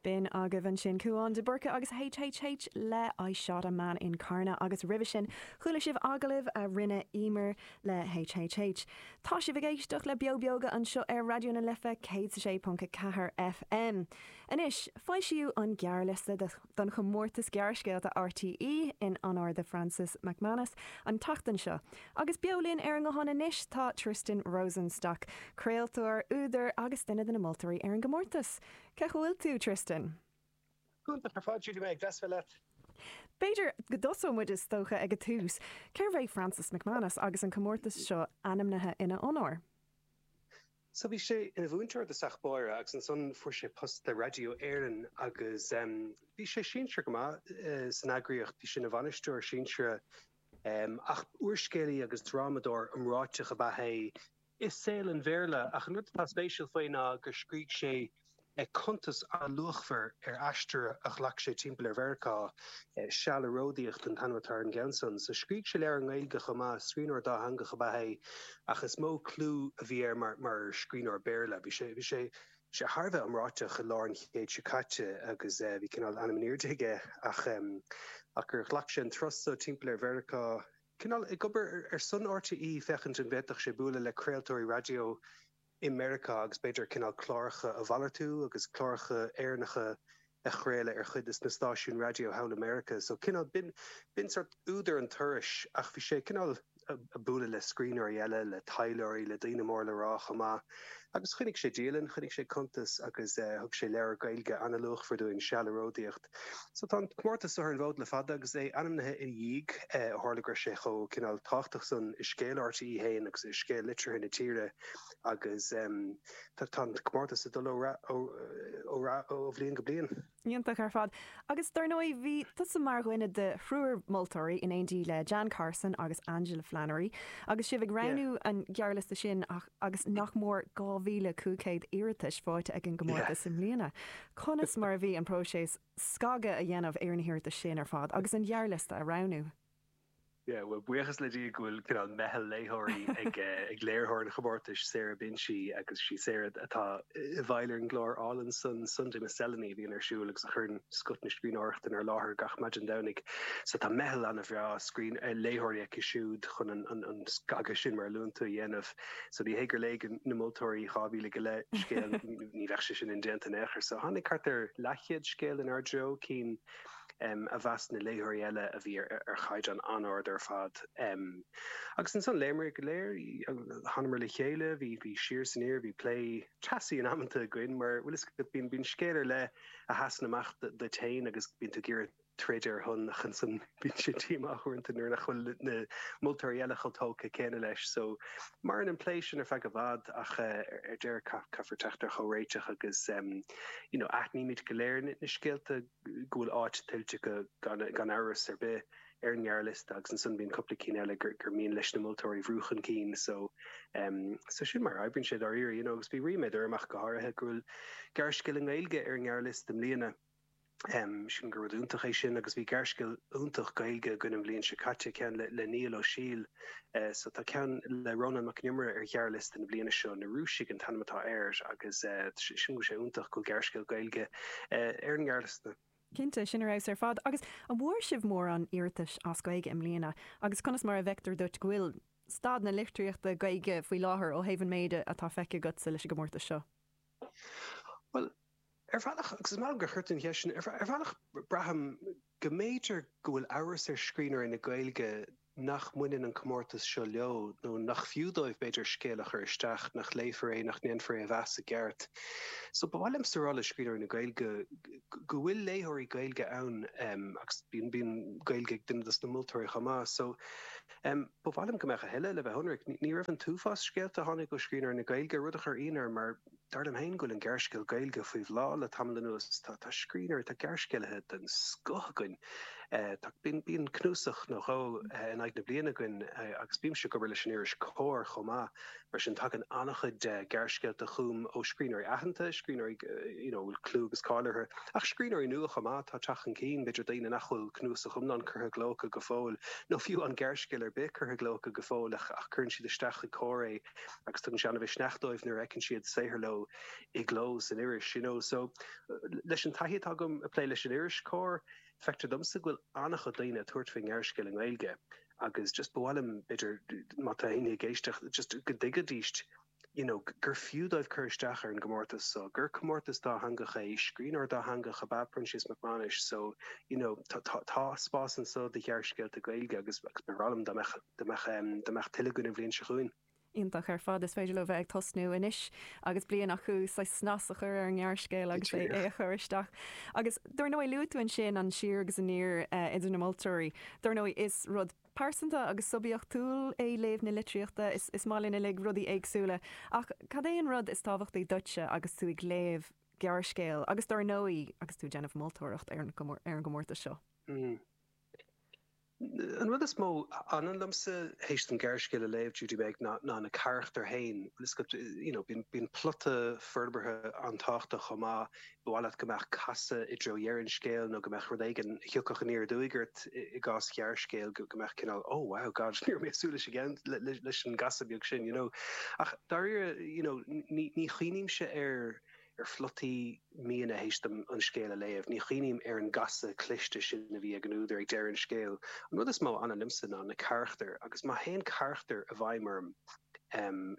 B'in agaibh ansin Cúán de Búrca agus HHH le I Shot a Man in Carna agus roimhe sin chuala sibh agallamh a rinne Emer le HHH. Tá sibh ag éisteacht le Beo Beoga anseo ar Raidió na Life 106.4 FM. Anois, foilsíodh an gearrliosta do. don chomórtas gearrscéalta RTÉ in onóir do Francis McManus an tseachtain seo. Agus beo linn ar an nguthán anois tá Tristan Rosenstock, craoltóir, údar agus duine de na moltóirí ar an gcomórtas. Cén chaoi a bhfuil tú, Tristan? Iontach ar fad, Judy, deas bualadh leat. B'fhéidir go dtosódh muid, is dócha, ag an tús. Cérbh é Francis McManus agus an comórtas seo ainmnithe ina onóir? So bhí sé ina mhúinteoir i dtosach báire agus ansan fuair sé post le Raidió Éireann agus bhí sé sinsearach go maith san eagraíocht, bhí sé ina bhainisteoir sinsearach. Ach úrscéalaí agus drámadóir iomráiteach ab ea é i saol an Bhéarla ach an rud atá spéisiúil faoi ná gur scrígh sé, cuntas an-luachmhar ar aistear a ghlac sé timpeall ar Mheiriceá Seal ag Ródaíocht an t-ainm atá ar an gceann san, so scrígh sé leabhar i nGaeilge chomh maith. Scríbhneoir dátheangach ab ea é ach is mó clú a bhí air mar scríbhneoir Béarla. Bhí sé thar a bheith iomráiteach i lár an chéid seo caite agus bhí cineál ainm in airde aige agus gur ghlac sé an turas so timpeall ar Mheiriceá, cineál ag obair ar son RTÉ féachaint an bhféadfadh sé bualadh le craoltóirí raidió. i Meiriceá agus b'fhéidir cineál cláracha a mhalartú agus cláracha Éireannacha a chraoladh ar chuid de na stáisiúin raidió thall i Meiriceá. So cineál, b'in, b'in sórt údar an turais ach bhí sé cineál a' bualadh le scríbhneoirí eile, le taidhleoirí, le daoine mór le rá chomh maith agus choinnigh sé dialann, choinnigh sé cuntas agus eh thug sé leabhar Gaeilge an-luachmhar dúinn, Seal ag Ródaíocht. So tá an comórtas so ar an bhfód le fada agus é ainmnithe ina dhiaidh, ó tharla go raibh sé chomh cineál tábhachtach san i scéal RTÉ fhéin agus i scéal litríocht na tíre agus tá tá an comórtas ag dul ó rath ó ó rath ó bhliain go bliain. Iontach ar fad. Agus dar ndóigh bhí tusa mar dhuine de thriúr moltóirí in éindí le Jan Carson agus Angela Flannery agus sibh ag Yeah. roghnú an ghearrliosta sin agus nach mór 2,500 iarratais faighte ag an gcomórtas i mbliana, conas mar a bhí an próiseas scagadh a dhéanamh ar na hiarratais sin ar fad agus an gearrliosta a roghnú? Yeah, bhuel, buíochas le Dia go bhfuil cineál meitheal léitheoirí ag léiritheoir an chomórtais, Sarah Binchy, agus sí Sarah atá i bhfeighil ar an gclár álainn san, Sunday Miscellany, a bhíonn ar siúl agus a chuireann scoth na scríbhneoireachta inár láthair gach maidin Domhnaigh. So tá meitheal ana-bhreá scríbh, eh, léitheoirí aici siúd chun an, an, an scagadh sin mar a luann tú a dhéanamh. So ní hé gur léigh na moltóirí dhá mhíle go leith scéal, ní bheadh sé sin indéanta in aon chor. So tháinig thart ar leathchéad scéal inár dtreo, cinn, a mheas na léitheoirí eile a bhí ar chaighdeán an-ard ar fad. Agus ansan, léamar go léir, thánamar le chéile, bhí siar is aniar, bhí plé teasaí in amanta againn, mar bhfuil a fhios agat, bíonn scéal ar leith a sheasann amach duit féin agus bíonn tú ag iarraidh troid ar a shon ach ansan bíonn sé díomách uaireanta nuair nach bhfuil na moltóirí eile chomh tógtha céanna leis so, Maireann an plé sin ar feadh i bhfad ach ar deireadh caithfear teacht ar chomhréiteach agus you know aithnímid go léir na scéalta go bhfuil áit tuillte acu gan amhras ar bith ar an ngearrliosta agus ansan bíonn cúpla cinn eile gur mian leis na moltóirí a bhrú chun cinn so so sin mar a oibríonn sé dáiríre you know agus bhí ríméad orm ach go háirithe go bhfuil gearrscéal i nGaeilge ar an ngearrliosta i mbliana. sílim gur rud iontach é sin agus bhí gearrscéal iontach Gaeilge againn an bhliain seo caite ceann le Niall Ó Siadhail so tá ceann le Rónán Mac Con Iomaire ar ghearrliosta na bliana seo na Rúisigh an t-ainm atá air agus sílim go bhfuil sé iontach go bhfuil gearrscéal Gaeilge ar an ngearrliosta. Cinnte, sin ar fheabhas ar fad. Agus an bhfuair sibh mórán iarratais as Gaeilge i mbliana agus conas mar a bhfeictear duit go bhfuil staid na litríochta Gaeilge faoi láthair ó thaobh an méid atá feicthe agatsa leis an gcomórtas seo? Bhuel, ar bhealach, agus is maith liom gur chuir tú an cheist sin, ar bhealach braithim go mb'fhéidir go bhfuil amhras ar scríbhneoirí na Gaeilge nach mbaineann an comórtas seo leo, nó nach fiú dóibh, b'fhéidir, scéal a chur isteach, nach léifear é, nach ndéanfar é a mheas i gceart. So ba mhaith liomsa a rá le scríbhneoirí na Gaeilge go bhfuil léitheoirí Gaeilge ann, agus bíonn Gaeilge ag duine dos na moltóirí chomh maith. So Ba mhaith liom go mbeadh a thuilleadh le bheith ionraic. Ní raibh an t-uafás scéalta a tháinig ó scríbhneoirí na Gaeilge, rud a chuir ionadh orm, mar dar liom féin go bhfuil an gearrscéal Gaeilge faoi bhláth le tamall anuas. Tá scríbhneoirí, tá gearrscéalaithe den scoth againn. Bíonn cnuasach nó dhó in aghaidh na bliana againn agus bímse ag obair leis an iris Comhar chomh maith. Mar sin, tagann an-chuid de ghearrscéalta chugam ó scríbhneoirí aitheanta, scríbhneoirí a bhfuil clú agus cáil orthu, ach scríbhneoirí nua chomh maith atá ag teacht chun cinn, b'fhéidir daoine nach bhfuil cnuasach iomlán curtha i gcló acu go fóill, nó fiú aon ghearrscéal ar bith curtha i gcló acu go fóill, ach cuireann siad isteach chuig Comhar é agus tugann sé an-mhisneach dóibh nuair a fheiceann siad saothar leo i gcló san iris. You know, so, leis an taithí atá agam ag plé leis an iris Comhar, feictear domsa go bhfuil an-chuid daoine ag tabhairt faoin ngearrscéal i nGaeilge, agus just ba mhaith liom, b'fhéidir, má tá éinne ag éisteacht, just go dtuigfidíst you know gur fiú dóibh cur isteach ar an gcomórtas so, gur comórtas dátheangach é, scríbhneoir dátheangach ab ea Proinsias Mac Mánais so you know tá tá tá spás anso do ghearrscéalta Gaeilge agus agus ba bhreá liom dá mbeadh dá mbeadh em dá mbeadh tuilleadh againn an bhliain seo chugainn. Iontach ar fad. Is féidir leo bheith ag tosnú anois agus bliain acu, saghas snas a chur ar an ngearrscéal agus é a chur isteach. Agus dar ndóigh, luaigh tú ansin an siar agus aniar idir na moltóirí. Dar ndóigh, is rud pearsanta agus suibiachtúil é léamh na litríochta, is maith linn uilig rudaí éagsúla. Ach cad é an rud is tábhachtaí duitse agus tú ag léamh gearrscéil agus dar ndóigh agus tú ag déanamh moltóireacht ar an gcomórtas seo? An rud is mó a fhanann liomsa théis dom gearrscéal a léamh, Judy-Meg, ná na carachtair féin. Bíonn plota forbartha an-tábhachtach chomh maith. Ba mhaith leat go mbeadh casadh i dtreo dheireadh an scéil nó go mbeadh rud éigin a thiocfadh aniar aduaidh ort, i gcás ghearrscéil, go mbeadh cineál, oh, wow, gosh, ní raibh mé ag súil leis an gcasadh beag sin, you know. Ach dáiríre, you know, ní chuimhnímse ar. ar phlotaí mionna théis dom an scéal a léamh. Ní chuimhním ar an gcasadh cliste sin a bhí ag an údar ag deireadh an scéil. An rud is mó a fhanann liomsa ná na carachtair, agus má théann carachtar i bhfeidhm orm,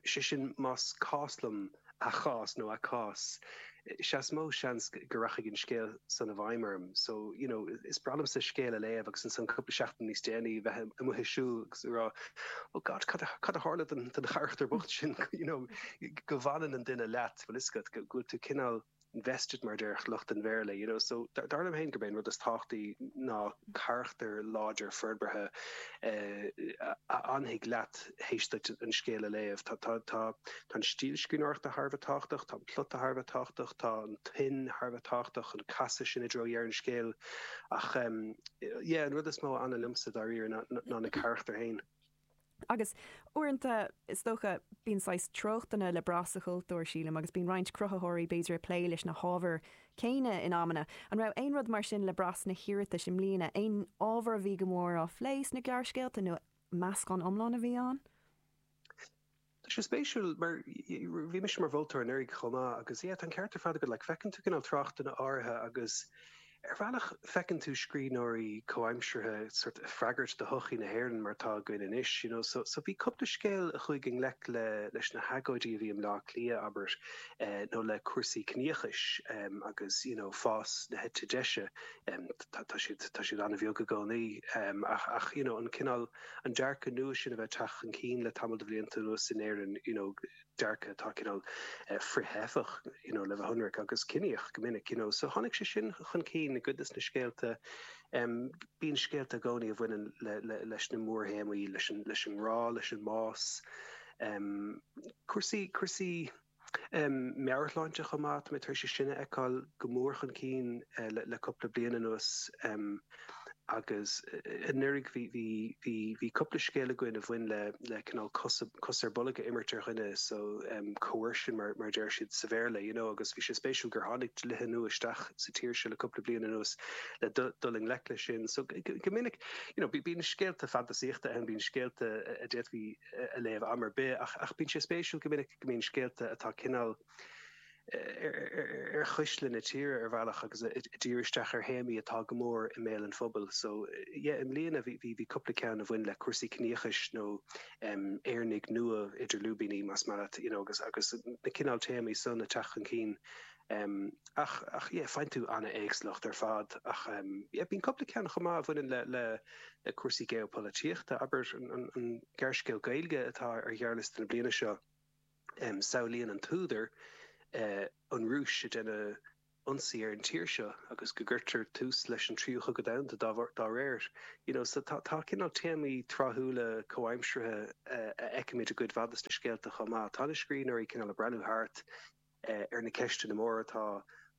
sé sin más cás liom a chás nó a cás, sea is mó seans go rachaidh an scéal san i bhfeidhm orm. So, you know, is breá liomsa scéal a léamh agus ansan cúpla seachtain níos déanaí a bheith amuigh ag siúl agus ag rá, oh God, cad a tharla don charachtar bocht sin, you know, go bhfanann an duine leat. Tá an fhios agat go bhfuil tú cineál invested mar déarfadh lucht an Bhéarla, you know, so dar liom féin gurb é an rud is tábhachtaí ná carachtar láidir forbartha a fhanfaidh leat théis duit an scéal a léamh. Tá, tá, tá, tá an stíl scríbhneoireachta thar a bheith tábhachtach, tá an plota thar a bheith tábhachtach, tá an tuin thar a bheith tábhachtach, an casadh sin i dtreo dheireadh an scéil ach, yeah, an rud is mó a fhanann liomsa dáiríre ná na carachtair féin. Agus uaireanta, is dócha, bíonn saghas treochtanna le brath sa chultúr, sílim, agus bíonn roinnt cruthaitheoirí, b'fhéidir, ag plé leis na hábhair chéanna in amanna. An raibh aon rud mar sin le brath sna hiarratais i mbliana? Aon ábhar a bhí go mór á phlé sna gearrscéalta nó meascán iomlán a bhí ann? Tá sé spéisiúil mar bhí mise i mo mholtóir anuraidh chomh maith agus yeah tá an ceart ar fad agat like feiceann tú cineál tráchtanna áirithe agus ar bhealach feiceann tú scríbhneoirí comhaimseartha sort of ag freagairt do shochaí na hÉireann mar atá againn anois you know so so bhí cúpla scéal a chuaigh i ngleic le leis na hagóidí a bhí i mBleá Cliath abair eh nó le cúrsaí ciníochais em agus you know fás na heite deise em tá siad tá siad an-bheag i gcónaí em ach ach you know an cineál an dearcadh nua sin a bheith ag teacht chun cinn le tamall de bhlianta anuas in Éirinn, you know dearcadh atá cineál frith-theifeach, you know le bheith ionraic, agus ciníoch go minic, you know. So tháinig sé sin chun cinn i gcuid de na scéalta. Um bíonn scéalta i gcónaí a bhaineann le, le, leis na mórthéamaí, leis an, leis an ngrá, leis an mbás, um cúrsaí, cúrsaí, meabhairshláinte chomh maith. Tá mé tar éis é sin a fheiceáil go mór chun cinn le cúpla bliain anuas agus anuraidh bhí cúpla scéal againn a bhain le cineál cos ar bolg a imirt ar dhuine, so coercion mar a deir siad sa Bhéarla, you know, agus bhí sé spéisiúil gur tháinig dlíthe nua isteach sa tír seo le cúpla bliain anuas le dul i ngleic leis sin. So go minic, you know, bíonn scéalta fantasaíochta ann, bíonn scéalta a d'fhéadfá, a léamh am ar bith, ach bíonn sé spéisiúil go minic go mbíonn scéalta atá cineál ar chuisle na tíre ar bhealach agus ag díriú isteach ar théamaí atá go mór i mbéal an phobail. So, yeah, i mbliana bhí cúpla ceann a bhain le cúrsaí ciníochais nó Éireannaigh nua idir lúibíní, más maith leat, you know, agus na cineál téamaí san ag teacht chun cinn Ach, ach yeah, faigheann tú an-éagsúlacht ar fad. Ach yeah, bíonn cúpla ceann chomh maith a bhaineann le, le, le cúrsaí geopolaitíochta. Abair, an, an, an gearrscéal Gaeilge atá ar ghearrliosta na bliana seo, samhlaíonn an t-údar an Rúis ag déanamh ionsaí ar an tír seo agus go gcuirtear tús leis an Tríú Chogadh Domhanda dá, dá réir. You know, so tá, tá cineál téamaí tráthúla comhaimseartha a fheicimid i gcuid mhaith de sna scéalta chomh maith. Tá na scríbhneoirí cineál ag breathnú thart. ar na ceisteanna móra atá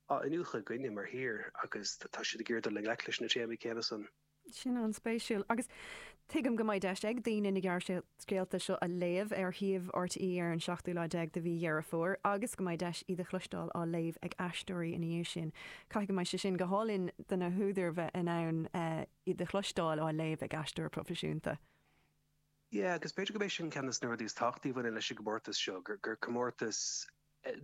á n-iniúchadh againne mar thír agus tá siad ag iarraidh dul i ngleic leis na téamaí céanna san. Sin an-spéisiúil. Agus tuigim go mbeidh deis ag daoine na gearrscéalta seo a léamh ar shuíomh RTÉ ar an seachtú lá déag de mhí Dheireadh Fómhair agus go mbeidh deis iad a chloisteáil á léamh ag aisteoirí ina dhiaidh sin. Caithfidh go mbeidh sé sin go hálainn do na húdair bheith in ann iad a chloisteáil á léamh ag aisteoir proifisiúnta. Sea, agus b'fhéidir gurb é sin ceann de na rudaí is tábhachtaí a bhaineann leis an gcomórtas seo, gur comórtas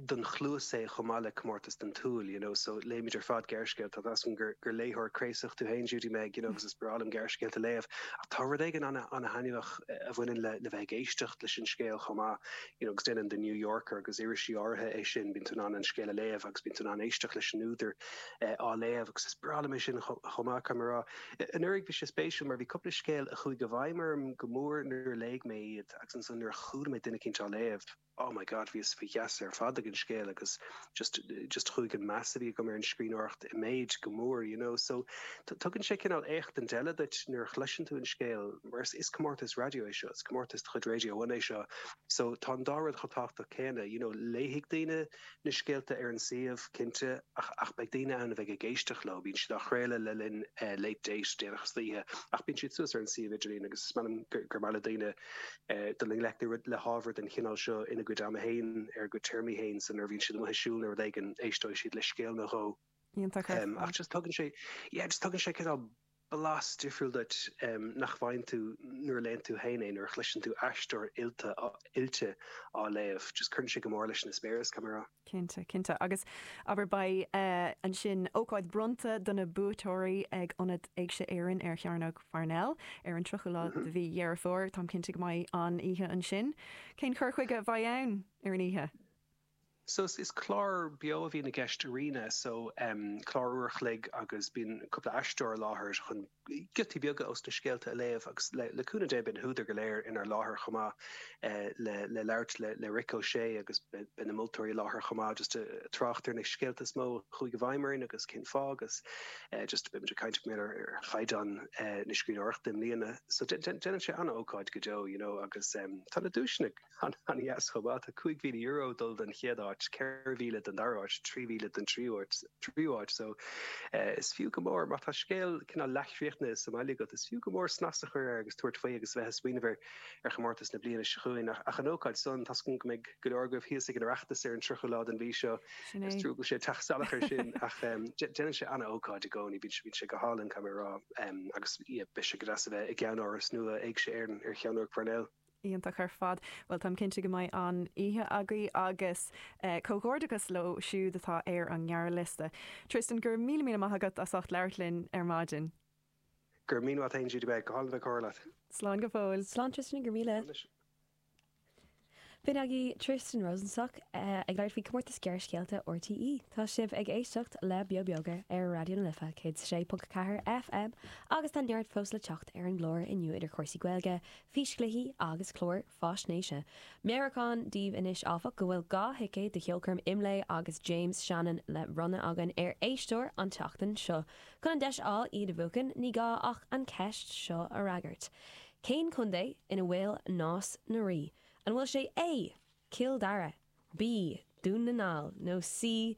don chluas é chomh maith le comórtas don tsúil, you know. So, léimid ar fad gearrscéalta, tá a fhios agam gur léitheoir craosach tú féin, Judy-Meg, you know, agus is breá liom gearrscéalta a léamh, ach tá rud éigin an-thaitneamhach a bhaineann le bheith ag éisteacht leis an scéal chomh maith, you know, agus déanann The New Yorker agus irisí áirithe é sin, bíonn tú in ann an scéal a léamh agus bíonn tú in ann éisteacht leis an údar á léamh agus is breá liom é sin chomh maith, caithfidh mé a rá. Anuraidh bhí sé spéisiúil mar bhí cúpla scéal a chuaigh i bhfeidhm orm go mór nuair a léigh mé iad agus ansan nuair a chuala mé duine eicínt á léamh, oh my God, bhíos faoi gheasa ar fad ag an scéal agus just, just chuaigh an meas a bhí agam ar an scríbhneoireacht i méid go mór, you know. So tugann sé cineál éachtaint eile duit nuair a chloiseann tú an scéal mar is, is comórtas raidió é seo, is comórtas de chuid Radio One é seo so tá an dá rud chomh tábhachtach céanna, you know, léifidh daoine, na scéalta ar an suíomh, cinnte, ach beidh daoine ann a bheidh ag éisteacht leo. Bíonn siad á gcraoladh le linn Late Date, déanach istoíche, ach bíonn siad suas ar an suíomh idirlín agus is amhlaidh gur maith le daoine dul i ngleic le hábhar den chineál seo ina gcuid ama féin, ar a gcuid téarmaí féin, so nuair a bhíonn siad amuigh ag siúl nó rud éigin, éisteoidh siad le scéal nó dhó. iontach ar fad. Just tugann sé, yeah, just tugann sé cineál blas difriúil duit nach bhfaigheann tú nuair a léann tú féin é, nuair a chloiseann tú aisteoir oilte, oilte á léamh. Just cuireann sé go mór leis an eispéireas, caithfidh mé a rá. Cinnte, cinnte. Agus, abair, beidh ansin ócáid bronnta do na buaiteoirí ag Ionad Éigse Éireann ar Chearnóg Parnell ar an 30ú lá de mhí Dheireadh Fómhair. Táim cinnte go mbeidh an-oíche ansin. Cén chur chuige a bheidh ann ar an oíche? So is clár beo a bhíonn i gceist arís so clár uair a chloig agus bíonn cúpla aisteoir i láthair chun giotaí beaga ós na scéalta a léamh agus le cúnamh Dé beidh na húdair go léir inár láthair chomh maith le labhairt le Rick O'Shea agus beidh na moltóirí i láthair chomh maith just ag trácht ar na scéalta is mó a chuaigh i bhfeidhm orainn agus cén fáth agus just beidh muid ag caint cineál ar chaighdeán na scríbhneoireachta i mbliana so déanann sé an-ócáid go deo you know agus tá na duaiseanna An-dheas chomh maith. Tá €5,000 ag dul don chéad áit, 4,000 don dara háit, 3,000 don tríú háit so is fiú go mór, má tá scéal cineál leathchríochnaithe sa mbaile agat, is fiú go mór snas a chur air agus tabhairt faoi agus a bheith ag smaoineamh ar chomórtas na bliana seo chugainn. Ach an ócáid san, tá súil agam go mbeidh go leor agaibh thíos ag an Oireachtas ar an 30ú lá den mhí seo. Sin é. Is trua go bhfuil sé ag teacht salach air sin ach déanann sé an-ócáid i gcónaí, bíonn sé go hálainn, caithfidh mé a rá, agus beidh sé go deas a bheith i gceannáras nua Éigse Éireann ar Chearnóg Parnell. Iontach ar fad. Bhuel, táim cinnte go mbeidh an-oíche agaibh agus comhghairdeachas leo siúd atá ar an ngearrliosta. Tristan, go raibh míle míle maith agat as ucht labhairt linn ar maidin. Go raibh míle maith agat, bhí sé go hálainn a bheith ag comhrá leat. Slán go fóill. Slán Tristan, go raibh míle. B'in againn Tristan Rosenstock ag labhairt faoi Chomórtas Gearrscéalta RTÉ. Tá sibh ag éisteacht le Beo Bíogach ar Raidió na Life 106.4 FM agus tá neart fós le teacht ar an gclár inniu idir chúrsaí Gaeilge, físchluichí agus cláir faisnéise. Meabhrúchán daoibh anois, áfach, go bhfuil dhá thicéad do cheolchoirm Imlé agus James Shannon le bronnadh againn ar éisteoir an tseachtain seo. Chun an deis a fháil iad a bhuachan, ní gá ach an cheist seo a fhreagairt. Cén contae ina bhfuil Nás na Rí? An bhfuil sé A. Cill Dara, B. Dún na nGall nó C.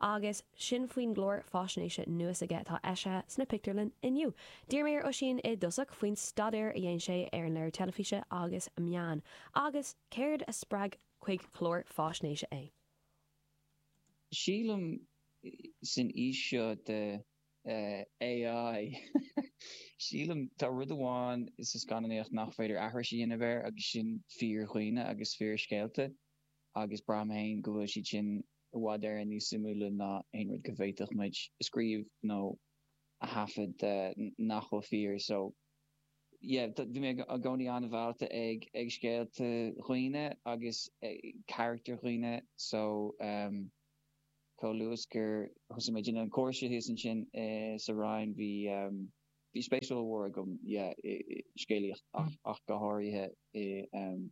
Agus sin faoin gclár faisnéise nua s'aige atá eisithe sna pictiúrlanna inniu. D'iarr mé ar Oisín i dtosach faoin staidéar a dhéan sé ar an léiriú teilifíse agus meáin, agus céard a spreag chuig clár faisnéise é. Sílim san aois seo de AI, sílim, tá rud amháin sa scannánaíocht nach féidir aithris a dhéanamh air agus sin fíordhaoine agus fíorscéalta agus braithim féin go bhfuil siad sin i bhfad Éireann níos suimiúla ná aon rud go bhféadfadh muid a scríobh nó a thaifead nach bhfuil fíor. So yeah, bhí mé i gcónaí an-mheallta ag scéalta dhaoine agus carachtair dhaoine so um chomh luath gur thosaigh muid an cúrsa thíos ansin sa Roinn, bhí um bhí spéis ollmhór agam yeah i scéalaíocht ach go háirithe i um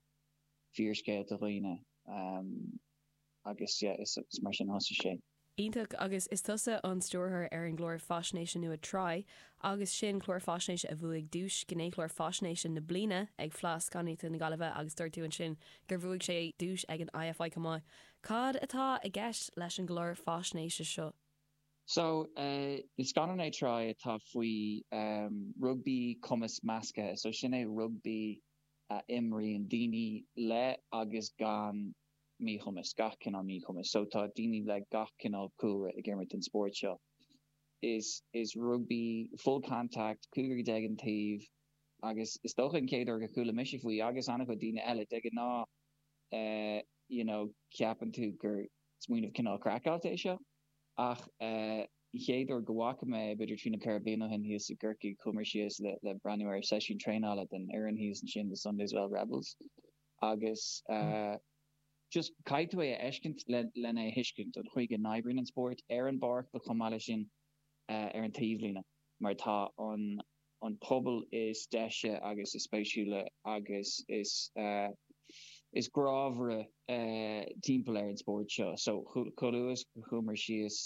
fíorscéalta dhaoine. um. Agus is mar sin a thosaigh sé. Iontach. Agus is tusa an stiúrthóir ar an gclár faisnéise nua Try agus sin, clár faisnéise a bhuaigh duais Gnéchlár Faisnéise na Bliana ag Fleadh Scannánaíochta na Gaillimhe agus dúirt tú ansin gur bhuaigh sé duais ag an IFI chomh maith. Cad atá i gceist leis an gclár faisnéise seo? So, is scannán é Try atá faoi rugbaí cumas measctha. So sin é rugbaí a imríonn daoine le agus gan míchumas, gach cineál míchumais. So tá daoine le gach cineál cúlra ag imirt an spóirt seo. Is is rugbaí full contact, cúigear déag an taobh agus is dócha an chéad uair gur chuala mise faoi agus an-chuid daoine eile. De ghnáth eh you know ceapann tú gur smaoineamh cineál craiceáilte é seo ach eh an chéad uair go bhfaca mé eh b'fhéidir trí nó ceithre bliana ó shin thíos i gCorcaigh chuamar síos le le breathnú ar seisiún traenála don fhoireann thíos ansin The Sunday's Well Rebels. Agus just caithfidh tú é a fheiscint lena thuiscint, an chaoi go n-oibríonn an spórt ar an bpáirc ach chomh maith leis sin ar an taobhlíne, mar tá an pobal is deise agus is spéisiúla agus is grámhara timpeall ar an spórt seo. So chomh luas go chuaigh muid síos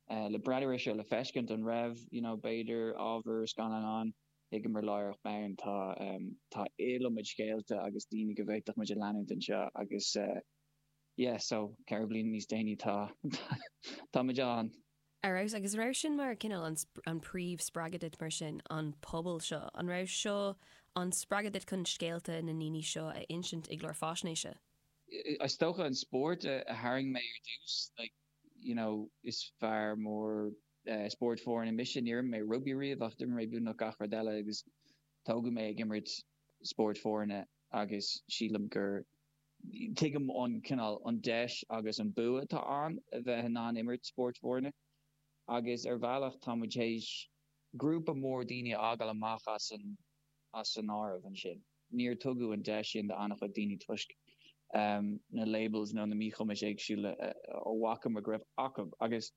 le breathnú ar seo le feiscint, an raibh, you know, b'fhéidir ábhar scannáin ann? Thuigeamar láithreach bonn tá tá iliomad scéalta agus daoine go bhféadfadh muid a leanúint anseo agus yeah so ceithre bliana níos déanaí tá tá muid ann. Ar fheabhas. Agus raibh sin mar cineál an an príomh spreagadh duit mar sin an pobal seo, an raibh seo an spreagadh duit chun scéalta na ndaoine seo a insint i gclár faisnéise? Is dócha an spórt a tharraing mé ar dtús like you know is fear mór, Spórt foirne mise. Níor imir mé rugbaí riamh ach d'imir mé beagnach gach rud eile agus tógadh mé ag imirt spórt foirne agus sílim go dtuigim an cineál, an deis agus an bua atá ann a bheith in ann imirt spórt foirne. Agus ar bhealach tá muid th'éis grúpa mór daoine a fhágáil amach as an áireamh ansin. Níor tugadh an deis sin do an-chuid daoine toisc na labels nó na míchumais éagsúla a bhfaca muid go raibh acu agus.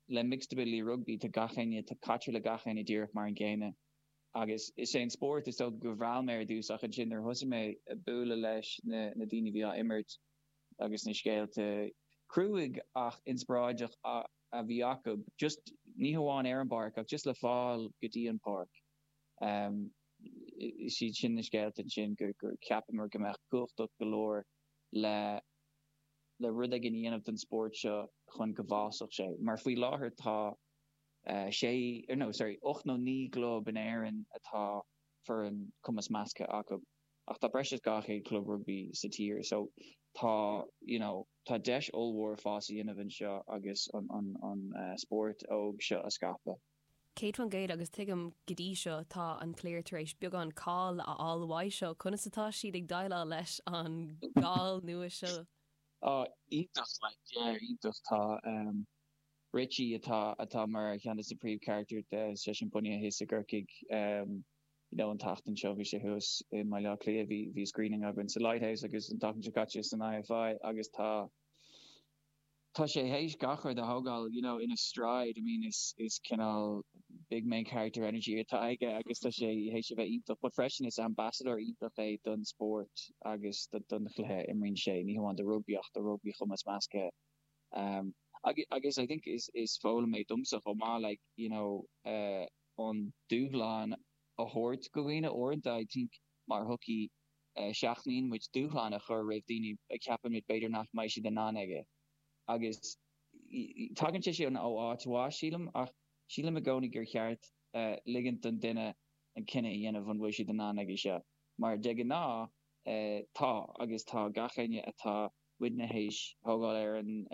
le mixed ability rugbaí, tá gach éinne, caitear le gach éinne díreach mar an gcéanna. Agus is é an spórt, is dócha a mheall mé ar dtús ach ansin nuair a thosaigh mé ag bualadh leis na daoine a bhí á imirt agus na scéalta cruaidh ach inspioráideach a bhí acu, just ní hamháin ar an bpáirc ach just le fáil go dtí an pháirc, is iad sin na scéalta ansin gur gur cheapamar go mbeadh cumhachtach go leor le. le rud éigin a dhéanamh don spórt seo chun go bhfásfadh sé, mar faoi láthair tá sé, no, sorry, ocht nó naoi gclub in Éirinn atá foireann cumas measctha acu, ach tá breis is dhá chéad club rugbaí sa tír. So tá, you know, tá deis ollmhór fás a dhéanamh anseo agus an spórt óg seo a scaipeadh. 100 faoin gcéad, agus tuigim go dtí seo, tá an chliar tar éis beagán cáil a fháil uaidh seo, conas atá siad ag déileáil leis an gcáil nua seo? Á, iontach, like, yeah, iontach. Tá, ehm, Richie atá, atá mar cheann de na príomhcharactair de, seisean bunaithe thios i gCorcaigh, ehm, you know, an tseachtain seo bhí sé thuas i mBaile Átha Cliath, bhí, bhí screening againn sa Lighthouse agus an tseachtain seo caite san IFI agus tá tá sé théis gach rud a thógáil you know ina stride, I mean is is cineál big main character energy atá aige agus tá sé théis a bheith iontach but freisin is ambassadóir iontach é don spórt agus don chluiche a imríonn sé, ní hamháin do rugbaí ach do rugbaí chumas measctha um agus agus I think is is foghlaim é domsa chomh maith like you know eh an dúshlán a thabhairt do dhaoine uaireanta I think mar shochaí. seachnaíonn muid dúshlán a chur roimh daoine a cheapaimid b'fhéidir nach mbeidh siad in ann aige. Agus tagann sé sin ó áit mhaith, sílim, ach sílim i gcónaí gur cheart ligint don duine an cinneadh a dhéanamh an bhfuil siad in ann aige seo, mar de ghnáth tá, agus tá gach éinne atá, muidne théis a thógáil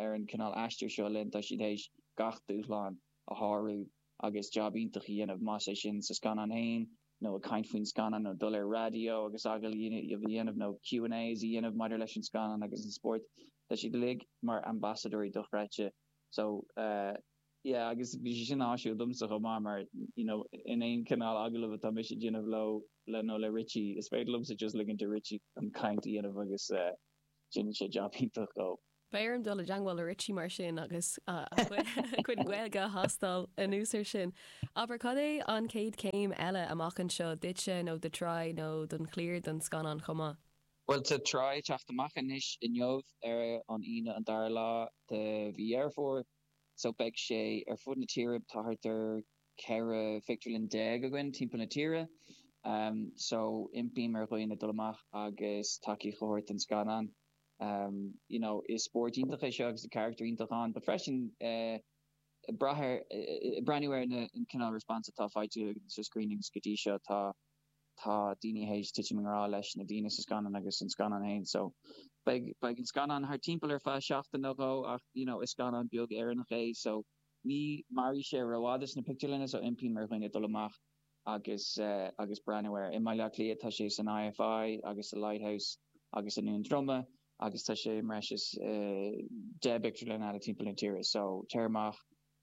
ar an cineál aistir seo linn, tá siad théis gach dúshlán a shárú. agus jab iontach a dhéanamh, más é sin sa scannán féin nó ag caint faoin scannán nó dul ar raidió agus agallaimh a dhéanamh nó Q and A's a dhéanamh maidir leis an scannán agus an spórt. Tá siad uilig mar ambasadóirí dochreidte. So yeah agus bhí sé sin áisiúil domsa chomh maith mar you know in aon chineál agallaimh atá mise ag déanamh leo le nó le Richie is féidir liomsa just ligint do Richie an chaint a dhéanamh agus déanann sé jab iontach chomh Beidh orm dul i dteangmháil le Richie mar sin agus a chuid Gaeilge a thástáil anuas ar sin. Abair, cad é an chéad chéim eile amach anseo, duitse nó do Try nó don chliar don scannán chomh maith? Bhuel, tá Try ag teacht amach anois, inniu, ar an Aoine an dara lá de mhí Dheireadh Fómhair, so beidh sé ar fud na tíre, tá thart ar 14 phictiúrlann againn timpeall na tíre, so impím ar dhaoine dul amach agus tacaíocht a thabhairt don scannán. Is spórt iontach é seo agus tá carachtar iontach ann. But freisin, breathnú ar na cineál response atá faighte sna screenings go dtí seo tá daoine théis titim i ngrá leis na daoine sa scannán agus an scannán féin. So, beidh an scannán thart timpeall ar feadh seachtain nó dhó ach you know is scannán beag Éireannach é so ní mairfidh sé rófhada sna pictiúrlanna so impím ar dhaoine dul amach. agus agus breathnú air. I mBaile Átha Cliath tá sé san IFI agus sa Lighthouse agus i nDún Droma agus tá sé i mbreis is deich bpictiúrlann eile timpeall na tíre so téigh amach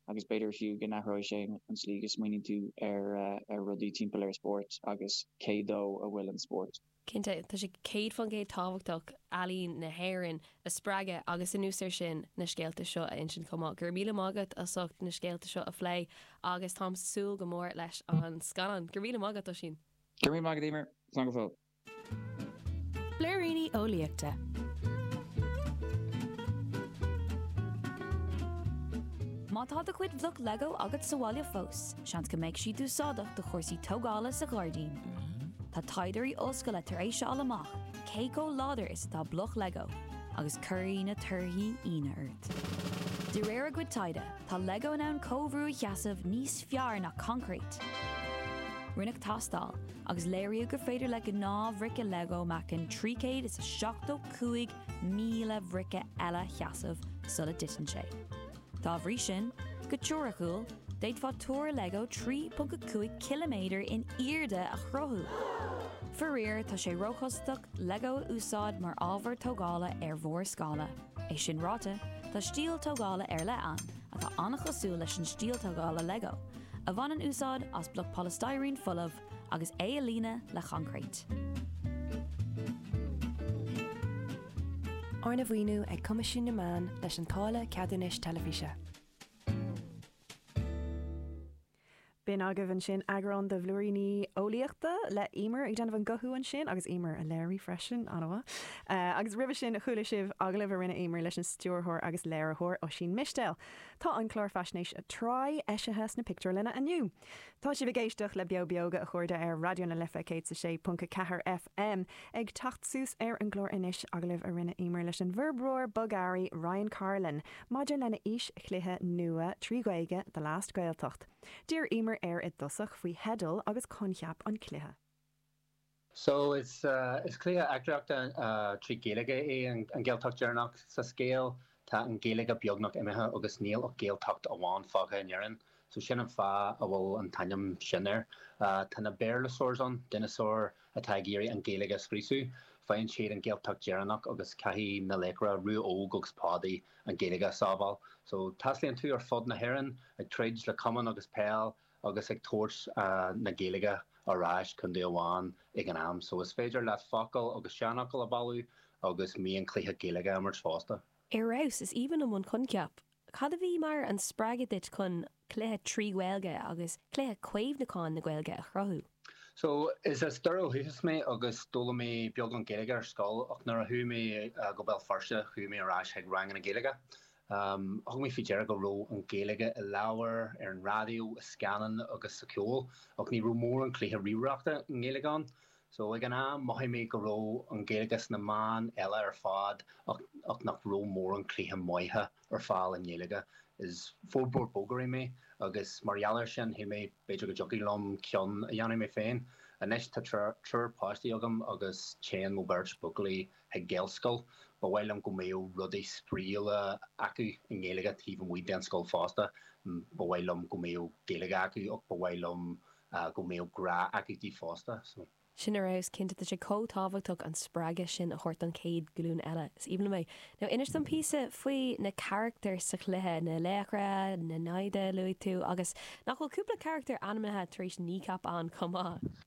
agus b'fhéidir fiú go n-athróidh sé an tslí go smaoiníonn tú ar rudaí timpeall ar spórt agus cé dó a bhfuil an spórt. Cinnte, tá sé céad fán gcéad tábhachtach ealaín na hÉireann a spreagadh agus anuas air sin, na scéalta seo a insint chomh maith. Go raibh míle maith agat as ucht na scéalta seo a phlé agus táim ag súil go mór leis an scannán. Go raibh míle maith agat, Oisín. Go raibh míle maith agat, Emer. Slán go fóill. Blúiríní Eolaíochta. Má tá do chuid bloc Lego agat sa bhaile fós. Seans go mbeidh siad úsáideach do chúrsaí tógála sa ghairdín. Tá taighdeoirí ollscoile tar éis a fháil amach cé chomh láidir is atá bloc Lego agus cuirfidh na torthaí ionadh ort. De réir a gcuid taighde, tá Lego in ann comhbhrú a sheasamh níos fearr ná coincréit. Rinneadh tástáil agus léiríodh gur féidir le gnáthbhríce Lego meáchan 375,000 bríce eile a sheasamh sula dtiteann sé. Dá bhrí sin, go teoiriciúil, d'fhéadfaí túr lego 3.5 km in airde a chruthú. Faraor, tá sé róchostasach lego a úsáid mar ábhar tógála ar mhórscála. É sin ráite, tá stíl tógála ar leith ann atá an-chosúil leis an stíl tógála lego, a bhaineann úsáid as bloc polystyrene folamh, agus é a líonadh le coincréit. Arna mhaoiniú ag Coimisiún na Meán leis an táille ceadúnais teilifíse. B'in agaibh ansin eagrán de bhlúiríní eolaíochta le Emer ag déanamh an guthú ansin, agus Emer á léiriú freisin, an-mhaith. Agus roimhe sin chuala sibh agallamh a rinne Emer leis an stiúrthóir agus léiritheoir Oisín Mistéil. Tá an clár faisnéise Try! eisithe sna pictiúrlanna inniu. Tá sibh ag éisteacht le Beo Beoga, a chairde, ar Raidió na Life 106.4 FM. Ag teacht suas ar an gclár anois, agallamh a rinne Emer leis an bhforbróir bogearraí Ryan Carlin maidir lena fhís-chluiche nua trí Ghaeilge, The Last Gaeltacht. D'iarr Emer air i dtosach faoi theideal agus coincheap an chluiche. So, is cluiche eachtraíochta trí Ghaeilge é An Ghaeltacht Deireanach. Sa scéal, tá an Ghaeilge beagnach imithe agus níl ach Gaeltacht amháin fágtha in Éirinn. So, sin an fáth a bhfuil an t-ainm sin air. Tá na Béarlasaurs ann, dineasáir atá ag iarraidh an Ghaeilge a scriosadh. Faigheann siad an Ghaeltacht Deireanach agus caithfidh na laochra, Rua Óg agus Pádaí, an Ghaeilge a sábháil. So, taistealaíonn tú ar fud na hÉireann ag troid le camán agus peil. agus ag tabhairt na Gaeilge ar ais contae amháin ag an am so, is féidir leat focail agus seanfhocail a bailiú agus mionchluiche Gaeilge a imirt fosta. Ar fheabhas! Is aoibhinn liom an coincheap. Cad a bhí mar an spreagadh duit chun cluiche trí Ghaeilge agus cluiche caomhnúcháin na Gaeilge a chruthú? So, is as Doire ó dhúchas mé agus d'fhoghlaim mé beagán Gaeilge ar scoil ach nuair a chuaigh mé go Béal Feirste chuaigh mé ar ais chuig ranganna Gaeilge Thug mé faoi deara go raibh an Ghaeilge i leabhair, ar an raidió, i scannáin agus sa cheol, ach ní raibh mórán cluiche ríomhaireachta i nGaeilge ann. So, ag an am, mhothaigh mé go raibh an Ghaeilge sna meáin eile ar fad ach nach raibh mórán cluiche maithe ar fáil i nGaeilge. Is forbróir bogearraí mé agus mar gheall air sin, shíl mé b'fhéidir go dtiocfadh liom ceann a dhéanamh mé féin. Anois, tá triúr páistí agam agus téann mo bheirt buachaillí chuig Gaelscoil. Ba mhaith liom go mbeadh rudaí spraíúla acu i nGaeilge taobh amuigh den scoil fosta. Ba mhaith liom go mbeadh Gaeilge acu ach ba mhaith liom go mbeadh grá acu di fosta. So. Sin ar fheabhas, cinnte tá sé chomh tábhachtach an spreagadh sin a thabhairt don chéad ghlúin eile. Is aoibhinn liom é. Now inis dom píosa faoi na carachtair sa chluiche, na laochra, na naimhde a luaigh tú agus nach bhfuil cúpla carachtar ainmnithe tar éis Kneecap ann chomh maith?